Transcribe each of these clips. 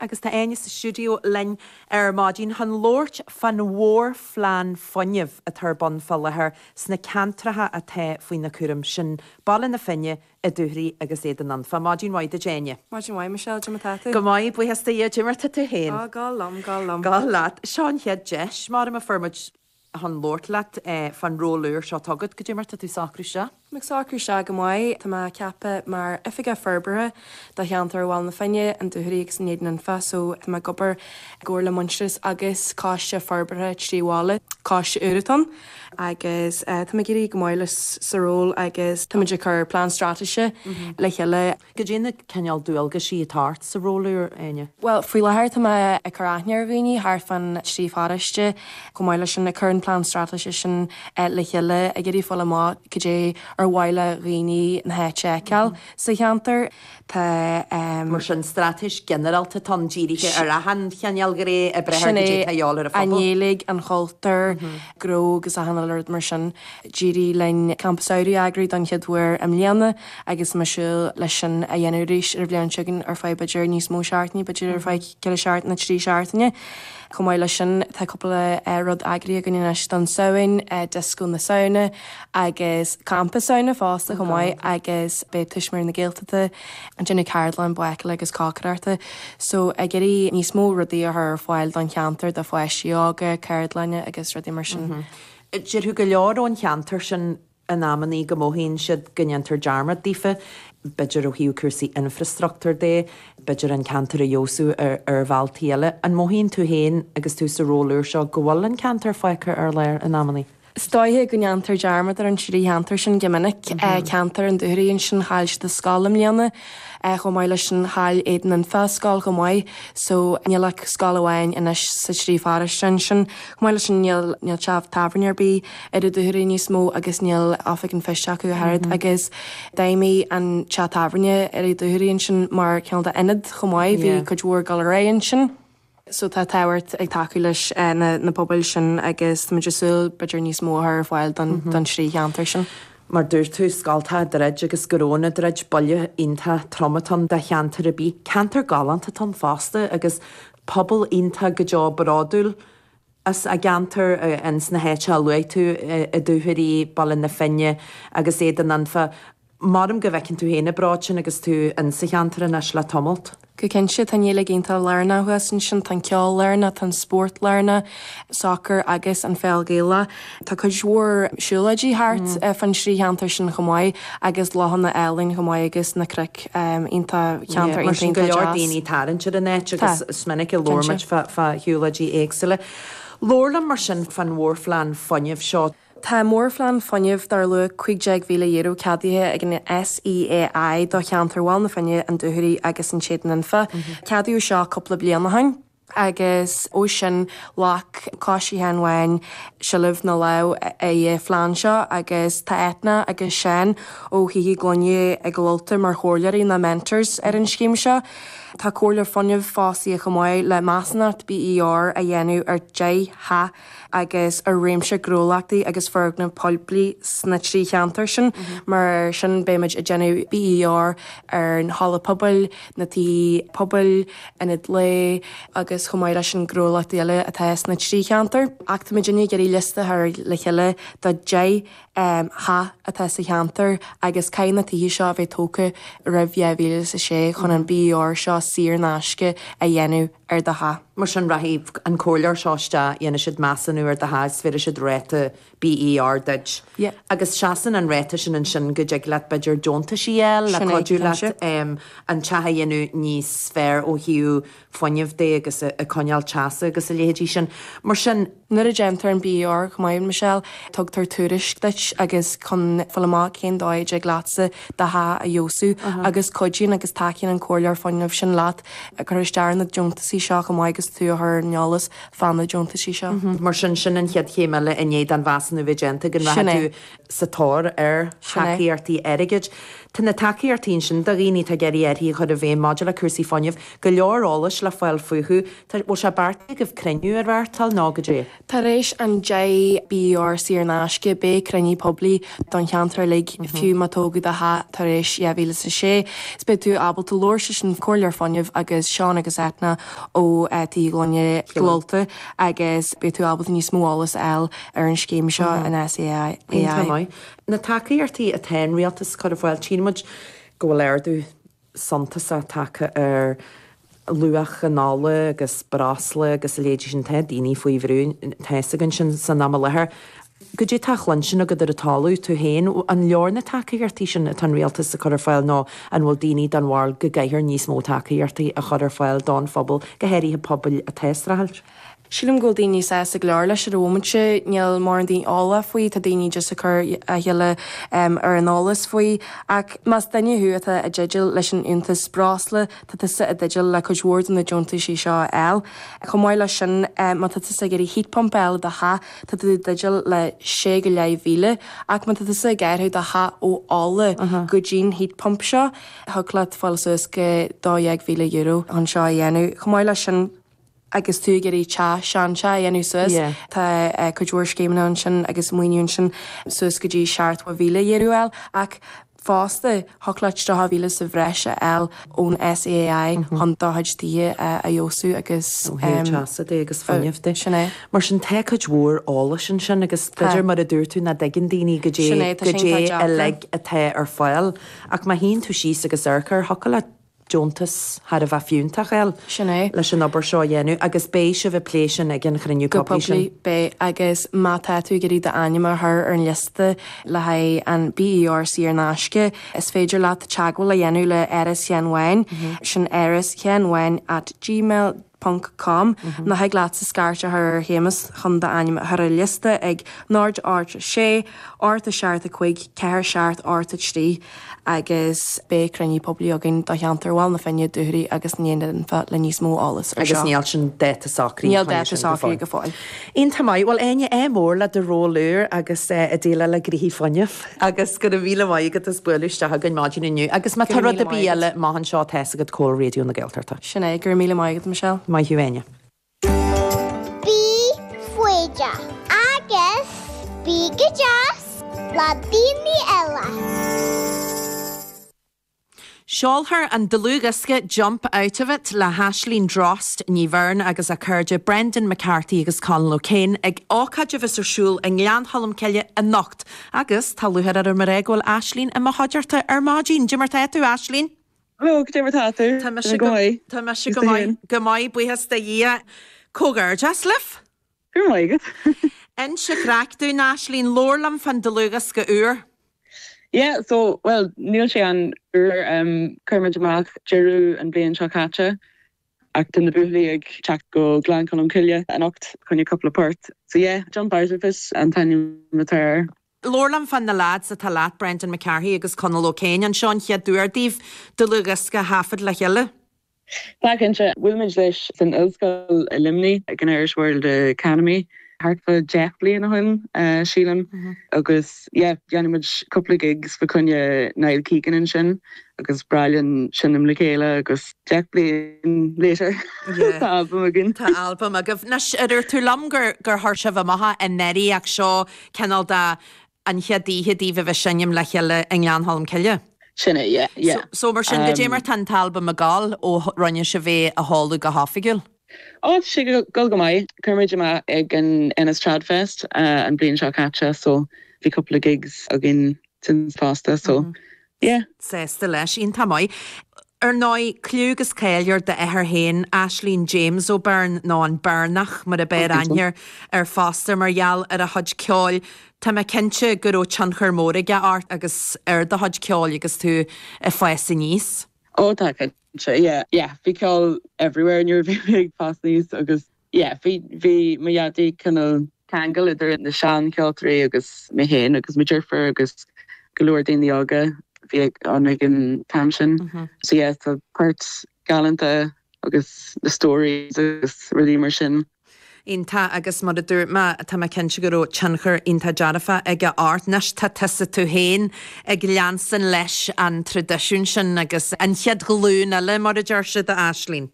agus tá Áine sa stiúideo linn ar maidin chun labhairt fán mhórphlean fuinnimh atá ar bun fá láthair sna ceantracha atá faoina cúram, sin Baile na Finne, an Dúchoraidh agus Éadan Anfa. Maidin mhaith duit Áine. Maidin mhaith Michelle, cad é mar tá tú? Go maith, buíochas do Dhia, cad é mar tá tú féin? Á, galánta, galánta. Galánta. Seo an chéad deis, maram, a fuair muid. chun labhairt leat fán ról úr seo atá agat, cad é mar tá tú ag socrú isteach? Tá mé ag socrú isteach go maith. Tá mé ceaptha mar Oifigeach Forbartha do cheantar Bhaile na Finne, an Dúchoraidh agus an Éadan Anfa so tá mé ag obair i gcomhar le Muintearas agus Coiste Forbartha Trí Bhaile, coiste úr atá ann agus tá mé ag éirí go maith leis sa ról agus táimid ag cur plean straitéise le chéile. Cad iad na cineál dualgaisí atá ort sa ról úr, Áine? Bhuel, faoi láthair tá mé ag cur aithne ar dhaoine thart fán trí pharóiste, chomh maith leis sin ag cur an plean straitéise sin le chéile, ag iarraidh fáil amach cad é ar mhaith le dhaoine na háite a fheiceáil sa cheantar. Tá. Mar sin, straitéis ghinearálta atá ann, dírithe ar achan chineál ghné oibre thar cad é atá ag dul ar an phobal. Sin é, an Ghaeilge, an chultúr, gnó agus achan uile rud mar sin. D'éirigh linn Campa Samhraidh a eagrú don chéad uair i mbliana. agus muid ag súil leis sin a dhéanamh arís ar an bhliain seo chugainn ar feadh b'fhéidir níos mó seachtaine, b'fhéidir ar feadh ceithre seachtaine nó trí seachtaine. Chomh maith leis sin, tá cúpla rud eagraithe againn anois don Samhain, Disco na Samhna agus Campa Samhna fosta chomh maith agus beidh Tuismitheoirí na Gaeltachta ag déanamh ceardlann bácála agus cócaireachta so ag iarraidh níos mó rudaí a chur ar fáil don cheantar, do pháistí óga, ceardlainne agus rudaí mar sin. Déarfadh go leor ón cheantar sin in amannaí go mothaíonn siad go ndéantar dearmad daofa, b'fhéidir ó thaobh cúrsaí infreastruchtúr de, b'fhéidir an ceantar a fheabhsú ar bhealtaí eile. An mothaíonn tú féin agus tú sa ról úr seo go bhfuil an ceantar fágtha ar lár in amannaí? Is dóiche go ndéantar dearmad ar an trí cheantar sin go minic, ceantar an Dúchoraidh, ansin chaill siad a scoil i mbliana, chomh maith leis sin chaill Éadan Anfa a scoil chomh maith, so níl ach scoil amháin anois sa trí pharóiste ansin. Chomh maith leis sin níl teach tábhairne ar bith. ar an Dúchoraidh níos mó agus níl Oifig an Phoist acu ach oiread agus d'fheidhmigh an teach tábhairne ar an Dúchoraidh ansin mar cineál de ionad chomh maith, bhí cuid mhór ag dul ar aghaidh ansin. So tá tábhachtach tacú leis na pobail sin agus táimid ag súil b'fhéidir níos mó a chur ar fáil don trí cheantar sin. Mar dúirt tú, scoltacha ag druid agus gnónna ag druid, buille iontach trom atá ann do cheantar ar bith. Ceantar galánta atá ann fosta agus pobal iontach go deo bródúil as a gceantar in sna háite a luaigh tú, an Dúchoraidh, Baile na Finne agus Éadan Anfa. Maram go bhfeiceann tú féin an bród sin agus tú in sa cheantar anois le tamalt. Go cinnte, tá an Ghaeilge iontach lárnach thuas ansin, tá an ceol lárnach, tá an spórt lárnach, sacar agus an pheil Ghaelach. Tá cuid mhór siúlóidí thart fá na trí cheantar sin chomh maith agus lochanna álainn chomh maith agus na cnoic iontach, ceantar iontach deas. Mar sin go leor daoine ag tarraingt ar an áit agus is minic a labhair muid fá shiúlóidí éagsúla. Labhair liom mar sin fán mhórphlean fuinnimh seo. Tá mórphlean fuinnimh dar luach €15,000 ceadaithe ag an SEAI do cheantar Bhaile na Finne, na Dúchoraidh agus an Éadain Anfa. Ceadaíodh seo cúpla bliain ó shoin. agus ó sin ghlac Coiste Éan Mheáin sealbh nó lámh ar an phlean seo, agus tá Eithne agus Seán ó Thithe Gloine Chill Ulta mar chomhairleoirí nó mentors ar an scéim seo. Tá comhairleoir fuinnimh fostaithe chomh maith le measúnacht BER a dhéanamh ar deich dteach. agus ar réimse gnólachtaí agus foirgnimh phoiblí sna trí cheantar sin. Mar sin, beimid ag déanamh BER ar an halla pobail, na tithe pobail, ionaid lae agus chomh maith leis sin gnólachtaí eile atá sna trí cheantar. Ach táimid inniu ag iarraidh liosta a chur le chéile de 10 dteach atá sa cheantar agus caithfidh na tithe seo a bheith tógtha roimh 2006 chun an BER seo saor in aisce a dhéanamh. ar do theach. Mar sin, rachaidh an comhairleoir seo isteach, dhéanfaidh siad measúnú ar do theach is gheobhaidh siad ráta BER duit. Agus seasann an ráta sin ansin go dtig leat, b'fhéidir, deontais a fháil le cuidiú leat an teach a dhéanamh níos fearr ó thaobh fuinnimh de agus a coinneáil teasa agus a leithéidí sin. Mar sin. Nuair a déantar an BER chomh maith, Michelle, tugtar tuairisc duit agus chun fáil amach cén dóigh a dtig leatsa do theach a fheabhsú agus cuidíonn agus tacaíonn an comhairleoir fuinnimh sin leat cur isteach ar na deontaisí seo chomh maith agus tú a chur ar an eolas fá na deontaisí seo. Mar sin, sin an chéad chéim eile i ndiaidh don mheasúnú bheith déanta, go mbeadh tú sa tóir ar thacaíochtaí airgid. Tá na tacaíochtaí ansin do dhaoine atá ag iarraidh athruithe a chur i bhfeidhm maidir le cúrsaí fuinnimh, go leor eolais le fáil fúthu, An bhfuil sé beartaithe agaibh cruinniú a reáchtáil nó goidé? Tar éis an BER saor in aisce beidh cruinniú poiblí don cheantar uilig, fiú má tógadh do theach tar éis 2006, 's beidh tú ábalta labhairt leis an comhairleoir fuinnimh agus Seán agus Eithne ó Thithe Gloine Chill Ulta agus beidh tú ábalta níos mó eolas a fháil ar an scéim seo an SEAI. Iontach maith. Na tacaíochtaí atá an Rialtas a chur ar fáil, tchíonn muid go bhfuil ardú suntasach tagtha ar luach an ola agus breosla agus a leithéidí sin, tá daoine faoi bhrú tá a fhios againn sin san am i láthair. Goidé atá le cluinstin agat ar an talamh tú féin, an leor na tacaíochtaí sin atá an rialtas ag cur ar fáil nó an bhfuil daoine den bharúil go gcaithfear níos mó tacaíochtaí a chur ar fáil don phobal, go háirithe pobail atá ag streachailt? Sílim go bhfuil daoine sásta go leor leis ar an mhóimint. Níl mórán daoine eolach faoi, tá daoine just ag cur a thuille ar an eolas faoi. Ach más duine thú atá i dteideal leis an liúntas breosla, tá tusa i dteideal le cuid mhór de na deontaisí seo a fháil. Chomh maith leis sin, má tá tusa ag iarraidh heat pump a fháil i do theach, tá tú i dteideal le sé go leith mhíle. Ach má tá tusa ag athrú do theach ó ola go dtí an heat pump seo, thig leat fáil suas go dó dhéag míle euro chun seo a dhéanamh. Chomh maith leis sin. agus tú ag iarraidh teach seanda a dhéanamh suas, tá cuid mhór scéimeanna ansin agus maoiniú ansin suas go dtí seachtó míle euro a fháil, ach fosta thiocfadh leat deich mhíle sa bhreis a fháil ón SEAI chun do chuid tithe a fheabhsú agus. Ó thaobh teasa de agus fuinnimh de. Sin é. Mar sin tá cuid mhór eolais ansin agus b'fhéidir mar a dúirt tú nach dtuigeann daoine goidé uilig atá ar fáil ach má shuíonn tú síos agus amharc air, thiocfadh leat deontas thar a bheith fiúntach a fháil, Sin é. leis an obair seo a dhéanamh agus beidh sibh ag plé sin ag an chruinniú poiblí sin. Beidh. Agus má tá tú ag iarraidh d'ainm a chur ar an liosta le haghaidh an BER saor in aisce, is féidir leat teagmháil a dhéanamh le Áras Sheáin Bháin, sin áras sheáin bháin at gmail. ponc com nó thig leatsa scairt a chur ar Shéamus chun d'ainm a chur ar liosta ag náid ocht a sé ocht a seacht a cúig ceathair seacht ocht a trí agus beidh cruinniú poiblí againn do cheantar Bhaile na Finne, Dúchoraidh agus Éadan Anfa le níos mó eolas ar seo. Agus níl sin dáta socraithe. Níl dáta socraithe go fóill. Iontach maith. Bhuel Áine, ádh mór le do ról úr agus ag déileáil le gnoithí fuinnimh. Agus go raibh míle maith agat as bualadh isteach againn maidin inniu. Go raibh míle maith agat. Agus má tá rud ar bith eile maith anseo tá's agat cá bhfuil Raidió na Gaeltachta. Sin é, go raibh míle maith agat, Michelle. Maith thú, Áine. Bí foighdeach agus bí go deas le daoine eile. Seolfar an dlúthdhiosca Jump Out of It le hAisling Drost Ní Bheirn agus a cairde Brendan McCarthy agus Conal O'Kane ag ócáid a bheas ar siúl i nGleann Cholm Cille anocht agus tá lúcháir orm a rá go bhfuil Aisling i mo chuideachta ar maidin. Goidé mar tá tú, Aisling! Bhuel, goidé mar tá tú! Tá mise go maith. Tá mise go maith. Go maith, buíochas do Dhia. Comhghairdeas libh! Go raibh maith agat. Inis an chraic dúinn Aisling, labhair liom fán dlúthdhiosca úr. Yeah, so, bhuel, níl sé an-úr, chuir muid amach deireadh an bhliain seo caite ach tá na buachaillí ag teacht go Gleann Cholm Cille anocht fá choinne cúpla port. So yeah, Jump Out of It an t-ainm atá air. Labhair liom fá na leaids atá leat, Brendan McCarthy agus Conall O'Kane. An seo an chéad uair daoibh dlúthdhiosca a thaifead le chéile? Tá, cinnte. Bhuail mé leis san ollscoil i Luimnigh, ag an Irish World Academy, thart fá dheich bliain ó shoin, sílim, agus yeah, dhéanadh muid cúpla gigs fa choinne Niall Keegan ansin, agus is breá linn seinm le chéile, agus deich bliain later, tá albam againn. Tá albam agaibh. Anois, dúirt tú liom gur chuir sibh amach é i ndáiríre, ach seo cineál de An chéad oíche daoibh a bheith seinm le chéile i nGleann Cholm Cille. Sin é, yeah, yeah. So, mar sin, goidé mar atá an t-albam ag dul, ó rinne sibh é a sheoladh go hoifigiúil? Ó, tá sé ag dul go maith. Chuir muid amach ag an Ennis Trad Fest an bhliain seo caite so bhí cúpla gigs againn since fosta so Yeah. Sásta leis, iontach maith. Ar ndóigh, cliú agus cáil ar d'athair féin, Aislinn James O'Beirne, nó an Beirneach mar a b'fhearr aithne air fosta mar gheall ar a chuid ceoil, tá mé cinnte go raibh tionchar mór aige ort agus ar do chuid ceoil agus tú ag fás aníos. Ó, cinnte. Yeah, yeah, bhí ceol everywhere nuair a bhí mé ag fás aníos agus yeah bhí bhí mo dhaidí cineál ceangal idir na sean ceoltóirí agus mé féin agus mo dheirfiúr agus go leor daoine óga a bhí ag éirí ag an t-am sin so yeah tá poirt galanta agus na stories agus rudaí mar sin. Iontach agus mar a dúirt mé tá mé cinnte go raibh tionchar iontach dearfach aige ort. Anois tá tusa tú féin ag leanstan leis an traidisiún sin agus an chéad ghlúin eile mar a deir siad a Aislinn.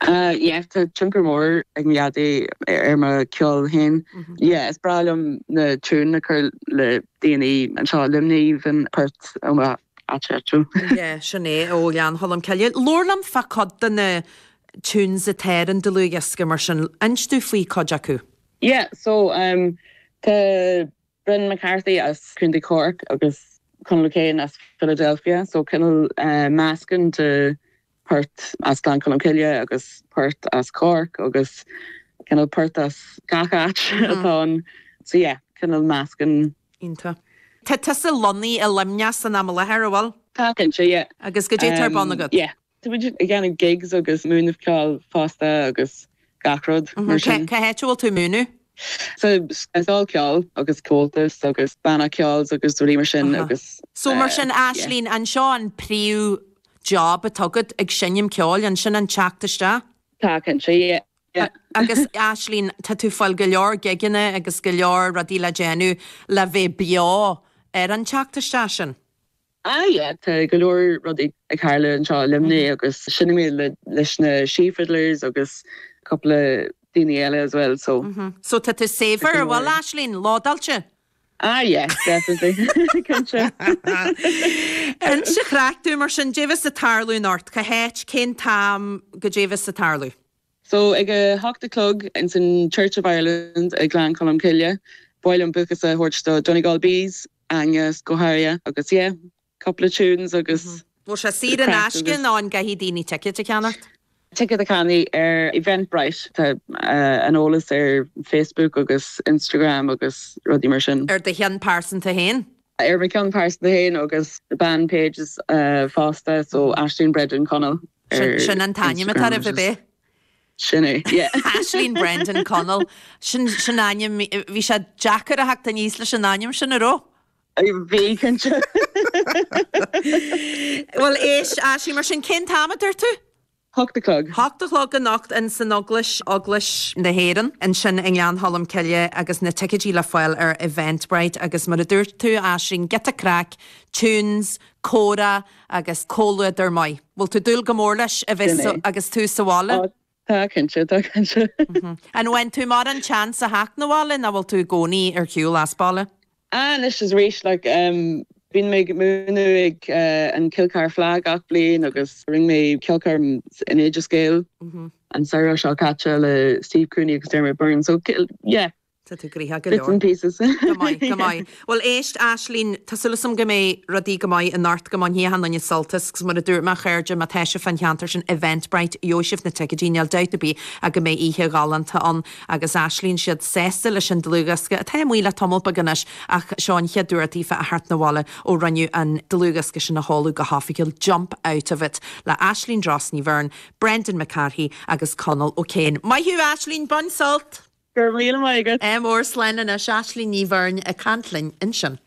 yeah tá tionchar mór ag mo dhaidí ar mo cheol féin yeah is breá liom na tiúin a chur le daoine anseo i Luimnigh na poirt ó m'áit dhúchais yeah sin é ó Ghleann Cholm Cille labhair liom fá cuid de na tunes atá ar an dlúthdhiosca mar sin inis dom faoi cuid acu. yeah so um tá Brendan McCarthy as Contae Cork agus Conall O'Kane as Philadelphia, so cineál meascán de phoirt as Gleann Cholm Cille agus poirt as Cork agus cineál poirt as gach áit atá ann so yeah cineál meascán. Iontach. Tá tusa lonnaithe i Luimneach san am i láthair, an bhfuil? Tá, cinnte, yeah. Agus goidé tá ar bun agat? Yeah. Tá muid ag déanamh gigs agus ag múineadh ceoil fosta agus gach rud mar sin. Cá háit a bhfuil tú ag múineadh? Sa scoil ceoil agus Comhaltas agus banna ceoil agus rudaí mar sin agus. So mar sin Aislinn, an seo an príomh job atá agat, ag seinm ceoil, an sin an teacht isteach? Tá cinnte, yeah. Agus Aislinn, tá tú ag fáil go leor gigeanna agus go leor rudaí le déanamh le bheith beo ar an teacht isteach sin? Aye, tá go leor rudaí ag tharlú anseo i Luimnigh agus seinnim mé leis na Sí Fiddlers agus cúpla daoine eile as well so. So tá tú saibhir, a bhuel Aisling? Lódáilte? Ah yes, definitely, cinnte. Anois a chraic, tú mar sin, caidé a bheas ag tarlú anocht? Cá háit, cén t-am, caidé a bheas ag tarlú? So ag a hocht a chlog ins an Church of Ireland i nGleann Cholm Cille, ba mhaith liom buíochas a thabhairt do Donegal Bees, Aengus, go háirithe, agus yeah, cúpla tunes agus. Bhfuil sé saor in aisce nó an gcaithfidh daoine ticéid a cheannacht? Ticéad a cheannaigh ar Eventbrite, tá an eolas ar Facebook agus Instagram agus rudaí mar sin. Ar do cheann pearsanta féin? Ar mo cheann pearsanta féin agus band pages fosta, so Aisling Brendan Conall ar Instagram. Sin an t-ainm atá oraibh, ab é? Sin é, yeah. Aisling Brendan, Conall. Sin, sin ainm, bhí sé deacair a theacht aníos leis an ainm sin, a' raibh? Bhí, cinnte. Bhuel, éist, Aisling, mar sin, cén t-am a dúirt tú? Hocht a chlog. Hocht a chlog anocht in san Eaglais, Eaglais na hÉireann, ansin i nGleann Cholm Cille agus na ticéidí le fáil ar Eventbrite agus mar a dúirt tú, Aisling, giota craic, tunes, comhrá agus comhluadar maith. Bhfuil tú ag dúil go mór leis a bheith Sin é. agus tú sa bhaile? Á, tá cinnte, tá cinnte. An bhfaigheann tú mórán de sheans a theacht na bhaile ná bhfuil tú i gcónaí ar shiúl as baile? Á, anois is arís, like, em, bíonn mé ag múineadh ag, eh, an Kilcar Fleadh gach bliain agus rinne mé ceolchoirm in Oideas Gael an samhradh seo caite le Steve Cooney agus Dermot Byrne, so, yeah, Tá tú gnoitheach go Bits leor. and pieces. Go maith, go maith. Bhuel éist, Aisling, tá súil agam go mbeidh rudaí go maith anocht, go mbainfidh achan nduine sult as agus mar a dúirt mé, a chairde, má tá sibh fán cheantar sin, Eventbrite, gheobhaidh sibh na ticéidí, níl dabht ar bith ach go mbeidh oíche ghalánta ann. Agus Aisling is iad sásta leis an dlúthdhiosca, atá amuigh le tamall beag anois ach seo an chéad uair daofa a theacht na bhaile ó rinneadh an dlúthdhiosca sin a sheoladh go hofigiúil, Jump Out of It le Aisling Drost Ní Bheirn, Brendan McCarthy agus Conall O'Kane. Maith thú Aisling, bain sult! Go raibh míle maith agat! M ór slán anois Aisling Ní Bheirn ag caint linn ansin.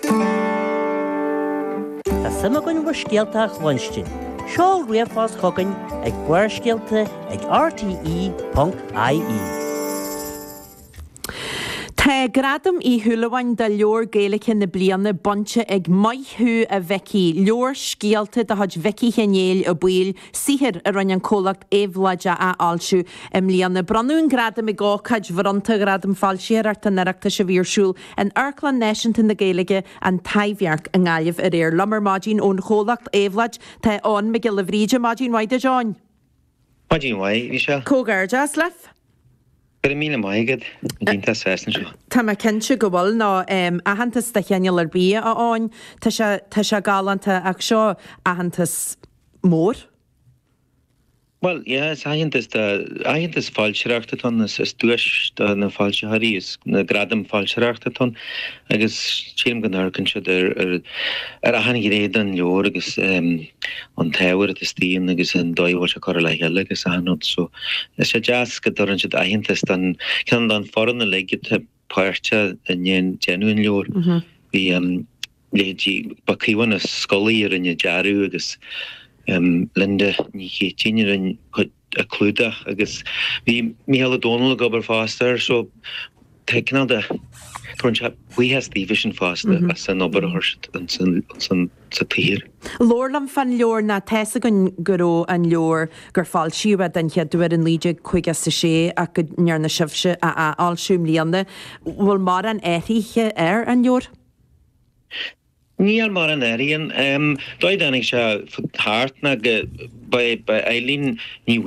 Tá suim againn i bhur scéalta a chluinstin. Seol ríomhphost chugainn ag barrscéalta ag rte ponc ie. Tá Gradam Uí Shúilleabháin do Leabhar Gaeilge na Bliana bainte ag Maith thú a Mhicí, leabhar scéalta de chuid Mhicí Sheáin Néill Ó Baoill, saothar a rinne an comhlacht Éabhlóid a athfhoilsiú i mbliana. Bronnadh an gradam ag ócáid bhronnta Ghradam Foilsitheoireachta an Oireachtais a bhí ar siúl in Amharclann Náisiúnta na Gaeilge, An Taibhdhearc i nGaillimh aréir. Liom ar maidin ón chomhlacht Éabhlóid tá Eoghan Mac Giolla Bhríde. Maidin mhaith duit, a Eoghain. Maidin mhaith, Aoife. Comhghairdeas libh. Go raibh míle maith agat. An iontach sásta anseo. Tá mé cinnte go bhfuil. Nó aitheantas de chineál ar bith, a Eoghain. Tá sé, tá sé galánta ach seo aitheantas. mór. Bhuel, yeah, is aitheantas do, aitheantas foilsitheoireachta atá ann, is duais do na foilsitheoirí, is na gradaim foilsitheoireachta atá ann agus sílim go n-amharcann siad ar, ar, ar achan ghné den leabhar agus an t-ábhar atá istigh ann agus an dóigh a bhfuil sé curtha le chéile agus achan rud so is sé deas go dtabharann siad aitheantas don, cineál, don fhoireann uilig, páirteach i ndéanamh an leabhair. Bhí leithéidí Caomhán Ó Scolaí a rinne dearadh agus Linda Ní Chéitinn a rinne an clúdach agus bhí Mícheál Ó Domhnaill ag obair fosta air so tá cineál de, tá an-bhuíochas daofa sin fosta as an obair a chuir siad ins an sa tsaothar. Labhair liom fán leabhar nó tá a fhios againn go raibh an leabhar gur foilsíodh é den chéad uair i 1956 ach go ndearna sibhse a athfhoilsiú i mbliana. Bhfuil mórán athruithe air, an leabhar? Níl mórán athruithe ann. Dóigh a dtáinig sé thart ná go, ba é Eileen Ní.